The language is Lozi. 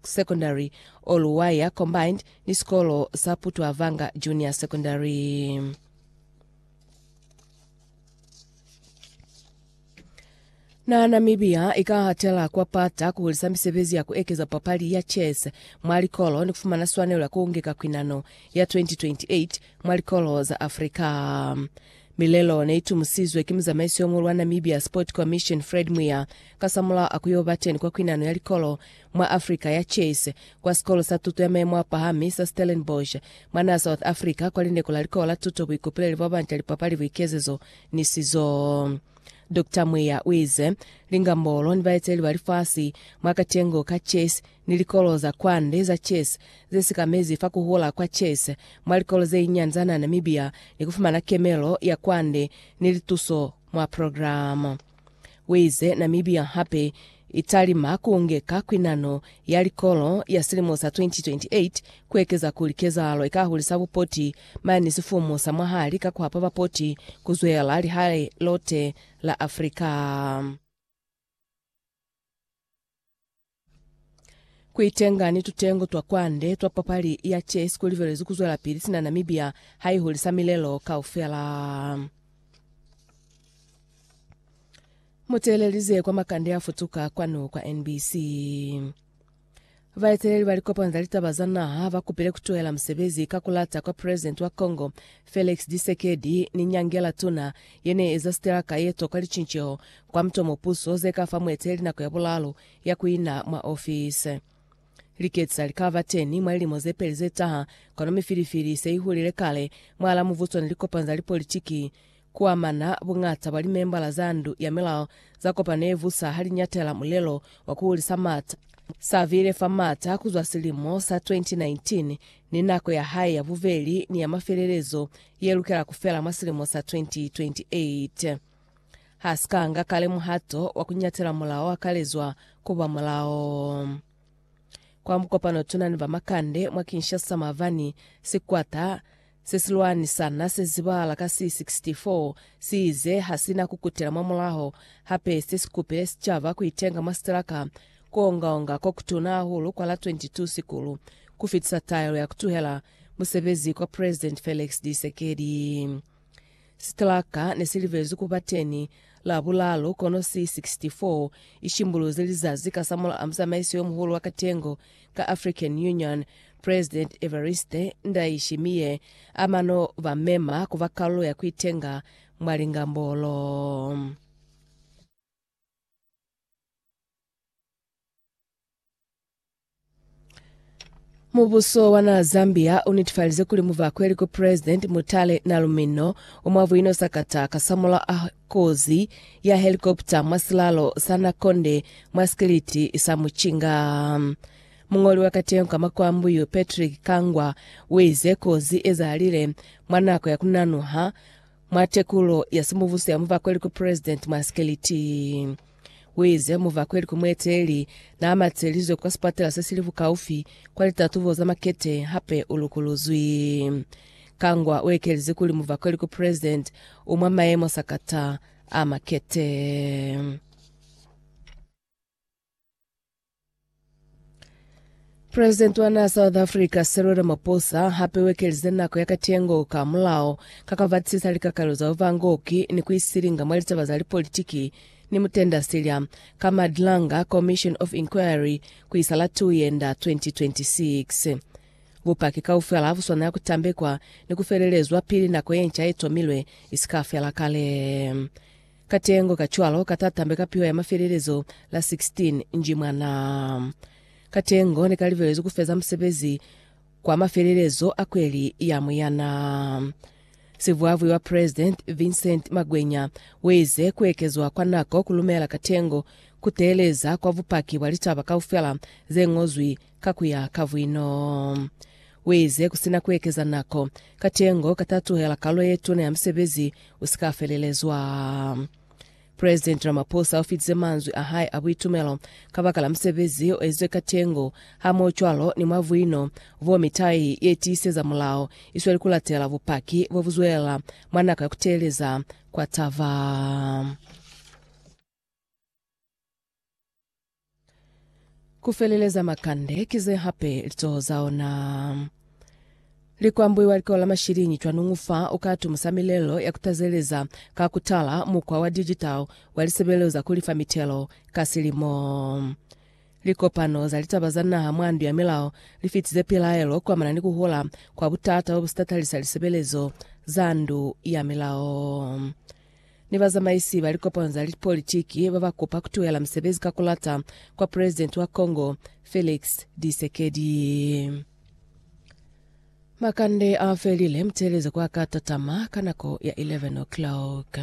Secondary, Oluwaya Combined ni sikolo sa Putwavanga Junior Secondary. Na Namibia i ka hatela kwa pata ku hulisa misebezi ya ku ekeza papali ya chess mwa likolo ni ku fumana swanelo ya ku ngeka kwinano ya 2028 mwa likolo za Afrika. Milelo ne itumusizwe ki muzamaiso yo muhulu wa Namibia Sport Commission Fred Mwiya kasamulaho a ku yo ba teni kwa kwinano ya likolo mwa Africa ya chess kwa sikolo sa tuto ya mayemo a pahami sa Stellenbosch mwa naha South Africa kwa lindeko la likolo la tuto buikopeleli bwa banta lipapali buikezezo ni sizo. Doctor Mwiya uize, Lingambolo ni baeteleli ba lifasi mwa katengo ka chess ni likolo za kwande za chess ze sikamezi fa ku hula kwa chess mwa likolo ze inyani za na Namibia ni ku fumana kemelo ya kwande ni lituso mwa programa. Uize Namibia hape i talima ku ngeka kwinano ya likolo ya silimo sa 2028 ku ekeza kuli kezahalo i ka hulisa bupoti mane ni sifumu sa mwahali ka ku hapa bapoti ku zwela lihali lote la Afrika. Kuitenga ni tutengo twa kwande twa papali ya chess kulibelezwi kuzwelapili sina Namibia haihulisa milelo kaufela. Muteelelize kwa makande a futuka kwanu kwa NBC. Baeteleli ba likopano za litaba za naha bakupile kutuhela musebezi ka kulata kwa president wa Congo Felix Tshisekedi ni nyangela tuna ye ne eza sitelaka ye toka licinceho kwa mutomo puso ze ka fa mueteli nako ya bulalu ya ku ina mwa ofisi. Liketsi za li ka ba teni mwa lilimo ze peli ze taha, kono mifilifili se i hulile kale mwalaa muvuso ni likopano za lipolitiki ku amana buñata bwa limembala za ndu ya milao za kopano ye vusa ha li ñatela mulelo wa ku hulisa maata sa bile fa maata ku zwa silimo sa 2019 ni nako ya hae ya bubeli ni ya mafelelezo ye lukela ku fela mwa silimo sa 2028. Ha si ka nga kale muhato wa ku nyatela mulao wa kalezwa ku ba mulao. Kwa mukopano tuna ni bamakande mwa Kinshasa mabani sikwata se si lwanisana se zibahala ka C64 si ize ha si na ku kutela mwa mulaho, hape se si kupile sicaba ku itenga mwa sitilaka Kuongaonga kokutuna hahulu kwa la 22 Sikulu kufitisa taelo ya kutuhela musebezi kwa President Felix Tshisekedi. Sitraka nesilibezwi kuba teni Labulalu kono si 64 ishimbuluzi lizazi kasamulaha muzamaiso yomuhulu wa katengo ka African Union, President Evariste Ndayishimiye amano bamema kuba kalulo ya kuitenga mwa lingambolo. Mubuso wa naha Zambia unetifalize kuli muvakweli ku President Mutale Nalumino umwa buino sakata kasamulaho a kozi ya helikopta mwa silalo sa Nakonde mwa sikiliti sa Muchinga. Mungoli wa kateho ka Makwambuyu Patrick Kangwa uize kozi ezahalile mwa nako ya kunanuha mwa tekulo ya simubuso ya muvakweli ku President mwa sikiliti. Kuize muvakweli ku mueteli naamatselizwe kwa sipatela sesili bukaufi kwa litatubo za makete hape ulukuluzwi. Kangwa uekelize kuli muvakweli ku president u mwa maemo sakata a makete. President wa naha South Africa Cyril Ramaphosa hape wekelize nako ya katengo ka mulao ka ka batisisa likakalo za uvangoki ni ku isilinga mwa litaba za lipolitiki ni mutenda silya ka Madlanga Commission of Inquiry ku isa la 2 Yenda 2026. Bupaki kaufela ha bu swanela ku tambekwa ni ku felelezwa pili nako ye nca ye tomilwe i si ka fela kale. Katengo kacwalo katatambe ka piho ya mafelelezo la 16 nji mwa naa. Katengo nekalibelezwi kufeza musebezi kwa mafelelezo a kweli ya Muyanaa. Sivwavwi wa President Vincent Magwenya weize kuekezwa kwa nako kulumela Katengo kuteeleza kwa bupaki bwa litaba kaufela zengozwi ka ku ya ka vwino. Uize, Ku sina ku ekeza nako, katengo ka ta tuhela kalo ye tuna ya musebezi u si ka felelezwa. President Ramaphosa u fitize manzwi a hae a buitumelo kabakala musebezi o ezizwe katengo, hamohocwalo ni mwa vwino vo mitai ye tiiseza mulao i sweli kulatela bupaki bo bu zwelela mwa nako ya ku teeleza kwa taba. Ku feleleza makande ki ze hape lizoho za ona li kwambuiwa likola la mashiliñi. Cwanuñu fa u ka atumusa milelo ya ku tazeleza ka ku tala mukwa wa digital wa lisebelelo za ku lifa mitelo ka silimo. Likopano za litaba za naha mwa Ndu ya Milao li fitize pilaelo kuamana ni ku hola kwa butata bo bu si tatalisa lisebelezo za Ndu ya Milao. ni bazamaisi ba likopanyo za politiki ba ba kupa ku tuhela musebezi ka ku lata kwa Presidenti wa Congo Felix Tshisekedi. Makande a felile, muteeleze kwa ka tatama ka nako ya 11 o'clock.